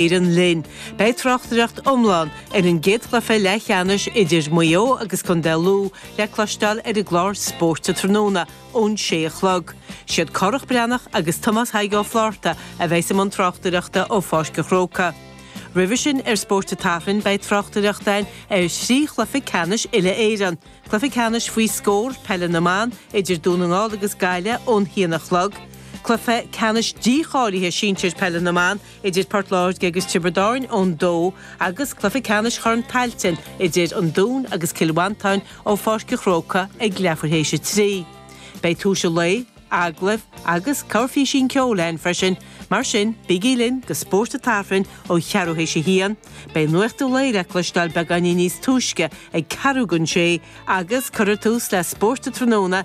Éireann linn. Beidh tráchtaireacht iomlán ar an gcéad chluiche leathcheannais idir Maigh Eo agus Contae Lú le cloisteáil ar an gclár Spórt tráthnóna ón sé a chlog. Siad Gearóid Breathnach agus Tomás Thaidhg Ó Flátharta a bheas i mbun tráchtaireachta ó Pháirc an Chrócaigh. Roimhe sin ar Spórt an tSathairn beidh tráchtaireacht ann ar thrí chluiche ceannais uile-Éireann, Cluiche Ceannais Faoi Scór Peile na mBan idir Dún na nGall agus Gaillimh ón haon a chlog, Cluiche Ceannais Díbeartha Sinsir Peile na mBan idir Port Láirge agus Tiobraid Árann ón 2 agus cluiche ceannais Chorn Tailteann idir an Dún agus Cill Mhantáin ó Pháirc an Chrócaigh ag leathuair théis a 3. Beidh tuar an lae, agallaimh agus corrphíosa ceoil ann freisin, mar sin bígí linn go Spórt an tSathairn ó cheathrú théis a haon. Beidh Nuacht an Lae le cloisteáil beagáinín níos túisce ag ceathrú gon sé agus cuirfear tús le Spórt an Tráthnóna,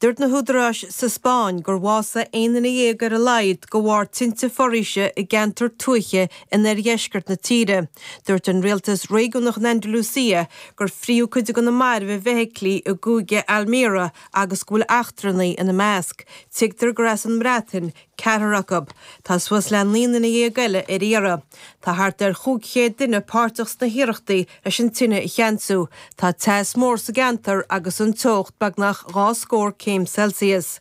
Dúirt na húdaráis sa Spáinn gur bhásaigh aon duine dhéag ar a laghad de bharr tinte foraoise i gceantar tuaithe in oirdheisceart na tíre. Dúirt an rialtas réigiúnach in Andalucia gur fríodh cuid de na mairbh i bhfeithiclí i gcúige Almería agus go bhfuil eachtrannaigh ina measc. Tuigtear gur as an mBreatain ceathrar acu. Tá suas le naoi nduine dhéag eile ar iarraidh. Tá thart ar chúig chéad duine páirteach sna hiarrachtaí leis an tine a cheansú. Tá teas mór sa gceantar agus an teocht beagnach dhá scór céim Celsius.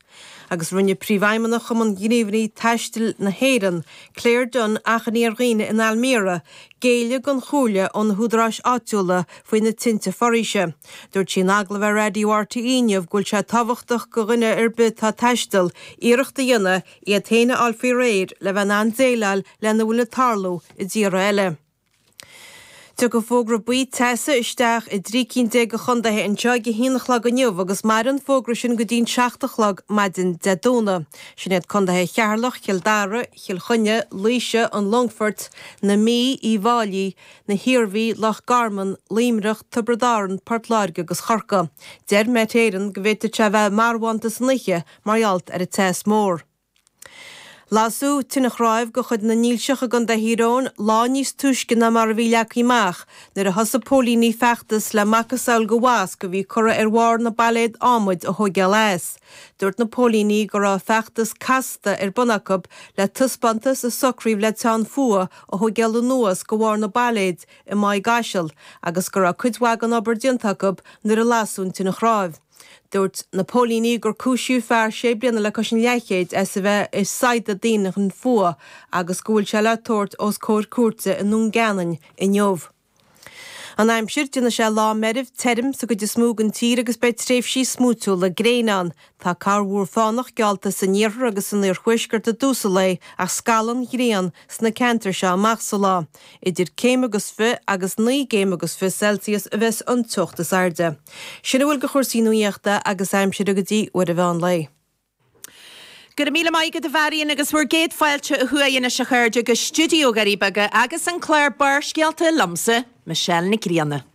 Agus rinne Príomhfheidhmeannach Chumann Ghníomhairí Taistil na hÉireann, Claire Dunne achainí ar dhaoine in Almería géilleadh don chomhairle ó na húdaráis áitiúla faoi na tinte foraoise. Dúirt sí in agallamh ar Raidió RTÉ inniu go bhfuil sé tábhachtach go dhuine ar bith atá ag taisteal, iarracht a dhéanamh iad féin a fháil faoi réir le bheith in ann déileáil lena bhfuil ag tarlú i dtíortha eile. Tiocfaidh fógra buí teasa isteach i dtrí cinn déag de chondaetha anseo ag a haon a chlog inniu agus mairfidh an fógra sin go dtí'n seacht a chlog maidin Dé Domhnaigh. Sin iad condaetha Cheatharlach, Chill Dara, Chill Chainnigh, Laoise, an Longfoirt, na Mí, Uíbh Fháilí, na hIarmhí, Loch Garman, Luimneach, Tiobraid Árann, Port Láirge agus Chorcaigh. Deir Met Éireann go bhféadfadh sé a bheith marbhánta san oíche mar ghealt ar an teas mór. Lasadh tine chráimh de chuid na ndílseoirí i gContae Thír Eoghain lá níos túisce ná mar a bhí leagtha amach nuair a thosaigh póilíní feachtas le macasamhail de mhosc a bhí curtha ar bharr na bpailéad ádhmaid a thóigeáil as Dúirt na póilíní go raibh feachtas casta ar bun acu le taispeántas a socraíodh le teann fuatha a thóigéail anuas de bharr na bpailéid i Maigh gCaisil agus go raibh cuid mhaith den obair déanta acu nuair a lasadh an tine chráimh. Dúirt na póilíní gur cúisíodh fear sé bliana le cois an leathchéid as a bheith ag saghdadh daoine chun fuatha agus go bhfuil sé le tabhairt os comhair cúirte i nDún Geanainn inniu. An aimsir, Déanfaidh sé lá meirbh tirim sa gcuid is mó den tír agus beidh tréimhsí smúitiúla gréine ann. Tá corrmhúr fánach geallta san iarthar agus san iarthuaisceart i dtús an lae ach scalfaidh an ghrian sna ceantair seo amach sa lá. Idir céim agus fiche agus naoi gcéim agus fiche Celsius a bheas an teocht is airde. Sin a bhfuil de chúrsaí nuaíochta agus aimsire go dtí uair an mheán lae. Go raibh míle maith agat a Mháirín agus bhur gcéad fáilte ó thuaidh anois a chairde go Stiúideo na nDoirí Beaga agus an clár Barrscéalta liomsa, Michelle Nic Grianna.